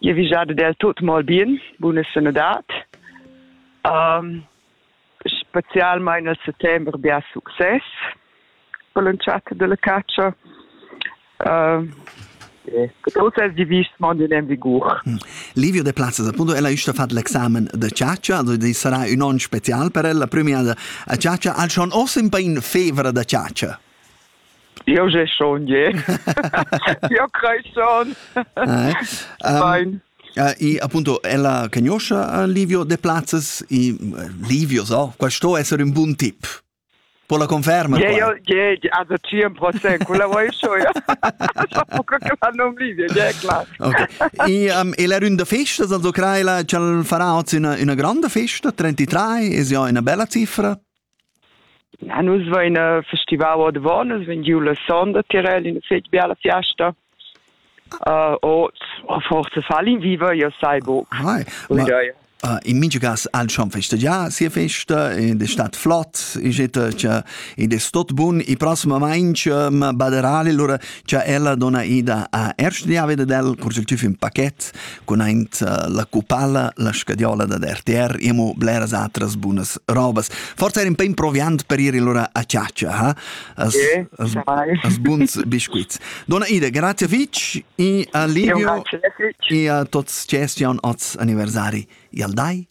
Io vigiade del tut mal bien, buna sanadad. Um, specialmain nel settembre bia success per l'entschatta della caccia. Uh, Tuts els divist mond in vigur. Mm. Livio De Plazzas, appunto, ella è stata fatto l'examen di Ciaccia, sarà un onn speciale per ella, prima a Ciaccia, al schon ossa in pain fevra da Ciaccia. Io j'ai schon je. Io crei schon. Fein. Uh, e appunto ella cagnoscia Livio de Plazzas e Livio so, questo essere un buon tip. Può la conferma? Yeah, io, yeah, yeah, da 100%, quella vuoi schon, ja. so che la non Livio, yeah, klar. Okay. E, um, e la runda festa, also crai la, ce farà oggi una, una grande festa, 33, è ja una bella cifra? Na, nus vein festival ordavon, nus vegn giu la sonda Tirel ina fetg biala fiasta. Uh, ot, a forza fal in viva, io sai buc. Hai, ma, uh, in mingiugas al schon festa ja sia festa ed è stat flott e geta cha ed è stot bun e prossimament ma baderale lura cha ella dona ida a erst dia veda del cursel tüf in paket cun aint eh, la cupala, la scadiola da RTR, emo bleras atras bunas robas. Forse era un po' improviant per ir allora a ciaccia, ha? As, sì, as, as buns biscuits. Donna Ida, grazie Fitch e a Livio e a tutti gesti oz anniversari. Al dai!